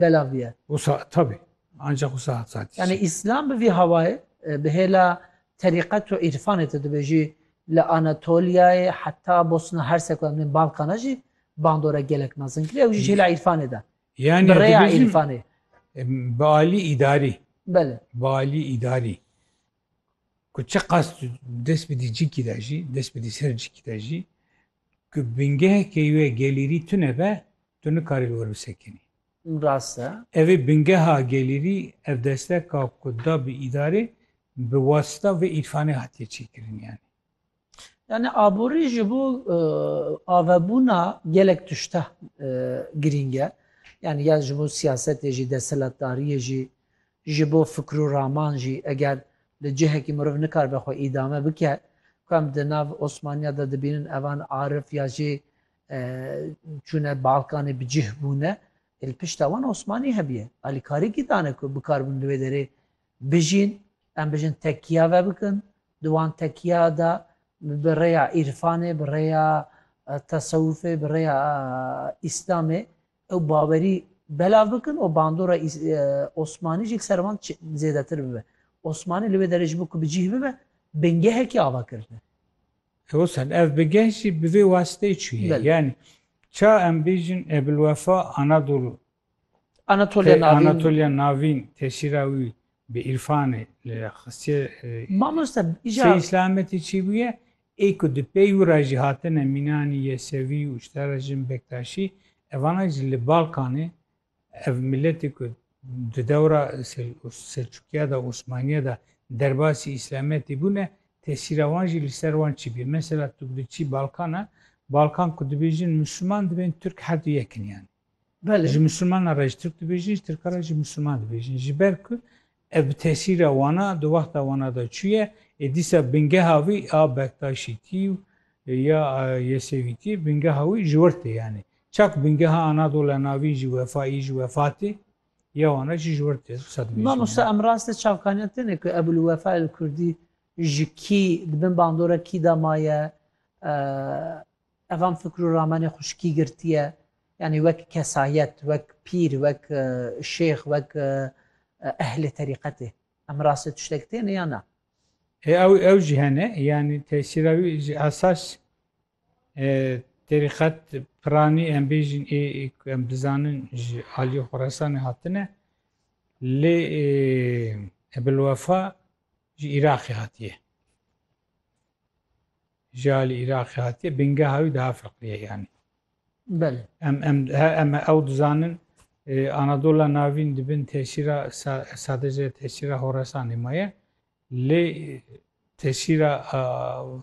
belav bûye. Wisa tabî ancak wisa hat zatî. Yanî îslam bi vî hawayê bi hêla terîqet û îrfanê tu dibêjî li Anatoliyayê heta Bosna Hersek û em dibên Balkana jî bandora gelek mezin kiriye ew jî ji hêla îrfanê de. Yanî bi rêya îrfanê. Bi alî îdarî. Belê. Bi alî îdarî. Ku çi qas dest bidî cikî de jî, dest bidî ser cikî de jî ku bingehekê wê gelîrî tune be Tu nikarî li wir bisekinî. Rast e. Ev ê bingeha gelîrî, ev desteka ku da bi îdarê bi wasita vê îrfanê hatiye çêkirin yanî. Yanî aborî ji bo avebûna gelek tişta girîng e. Yanî ya ji bo siyasetê jî, desthilatdariyê jî, ji bo fikr û raman jî eger li cihekî meriv nikaribe xwe îdame bike, ku em di nav Osmaniya de dibînin evan arif ya jê Çûne Balkanê bi cih bûne ê li pişta wan Osmanî hebiye. Alîkarî kî dane ku bikar bin li wê derê bijîn, em bijin tekiya vebikin, di wan tekiya de bi rêya îrfanê, bi rêya tesewufê, bi rêya îslamê ew bawerî belav bikin û bandora Osmanî jî li ser wan zêdetir bibe. Osmanî li wê derê ji bo ku bi cih bibe bingehekî ava kirine. Hewsan ev bi geh jî bi vê wasiteyê çûye. Yanî ça em bêjin Ebulwefa Anadolu tê Anatolya Navîn tesîra wî bi îrfanê li xistiye Sey Selametî çî bûye ê ku di pey wî re jî hatine mînanî Yesevî û ji te re jin Bektaşî evana jî li Balkanê Ev miletê ku di dewra Selçukiya de, Osmaniya de derbasî îslametê bûne, tesîra wan jî li ser wan çi bûye? Mesela tu diçî Balkana, Balkan ku dibêjin Musulman dibên Tirk her du yek in yanî. Ji Musulmanan re ji Tirk dibêjin, ji Tirkan re jî Musulman dibêjin. Ji ber ku Ev bi tesîra wana di wexta wana de çûye ê dîsa bingeha wî a Bektaşîtî û ya Yesewîtî bingeha wî ji wir tê yanî çak bingeha Anadola Navîn jî Wefayî jî Wefatî ya wana jî ji wir tê qisa dibêjin. Mamosta em rast e çavkaniya têne ku Ebul Wefa El Kurdî ji kî di bin bandora kî de maye? Evan Fikru Rahmanê xwe ji kî girtiye? Yanî wek kesayet, wek pîr, wek şêx, wek ehlê terîqetê. Em rastê tiştek têne ya na? E ew ew jî hene. Yanî tesîra wî ji esas terîqet piranî em bêjin ê ku em dizanin ji aliyê Xorasanê hatine. Lê Ebilwefa ji Îraqê hatiye. Ji alî Îraqê hatiye bingeha wî daha fiqriye yanî. Belê. Em em em ew dizanin Anadola Navîn di bin tesîra sadece tesîra Horesanê maye lê tesîra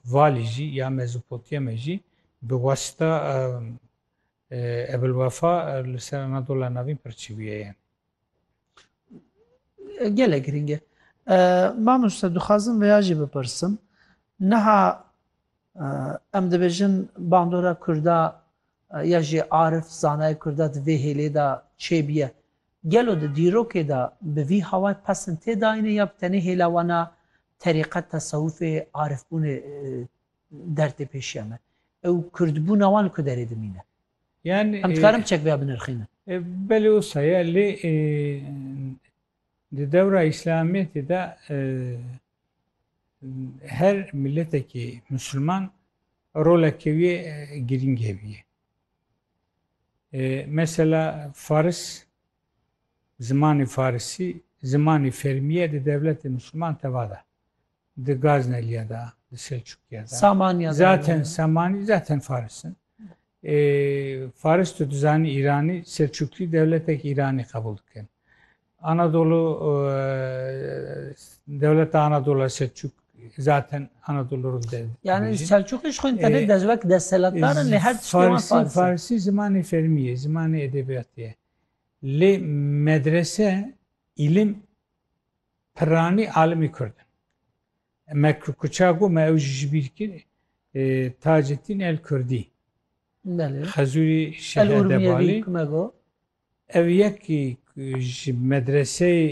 valî jî ya Mezopotyame jî bi wasita Ebilwefa li ser Anadola Navîn pirçîbûye yani. Gelek giring e. Mamoste dixwazim veya jî bipirsim. Niha em dibêjin bandora Kurda ya jî arif zanayê Kurda di vê hêlê de çêbiye. Gelo di dîrokê de bi vî hawayê pesn tê dayîne ya bi tenê hêla wan a terîqet, tesewufê, arifbûnê der tê pêşiya me? Ew kurdbûna wan li ku derê dimîne? Em dikarin çek bêya binirxînin. Belê wisa ye lê di dewra îslamiyetê de her miletekî musulman rolekê wî ye girîng hebî ye. Mesela faris zimanê farisî zimanê fermî ye di dewletê musulman tevada. Di Gazneliya de, di Selçukiya de. Samaniya de. Zaten Samani, zaten Faris in. Ê, Faris tu dizanî Îranî, Selçukî dewletek Îranî qebûl dikin. Anadolu dewleta Anadolu Selçuk zaten Anadolu rû de. Yani Selçukî ji xwên tenê dezwek destselatdarin lê her tiştê wan Faris. Farisî zimanê fermî ye, zimanê edebiyatê ye. Lê medrese îlim Pirranî alimê Kurd in. Me Kuça got me ew jî ji bîr kir. Taceddîn El Kurdî. Xezûrî Şêx Edebalî. Ev yekî ji medreseyê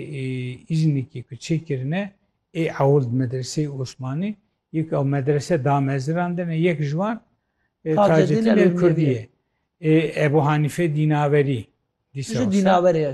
Îznikê ku çêkirine ê ewld medreseyê Osmanî yek ew medrese da mezirandine yek ji wan Taceddîn El Kurdî ye. Ebu Hanîfe Dînaverî. Dîsa dînaverê ye.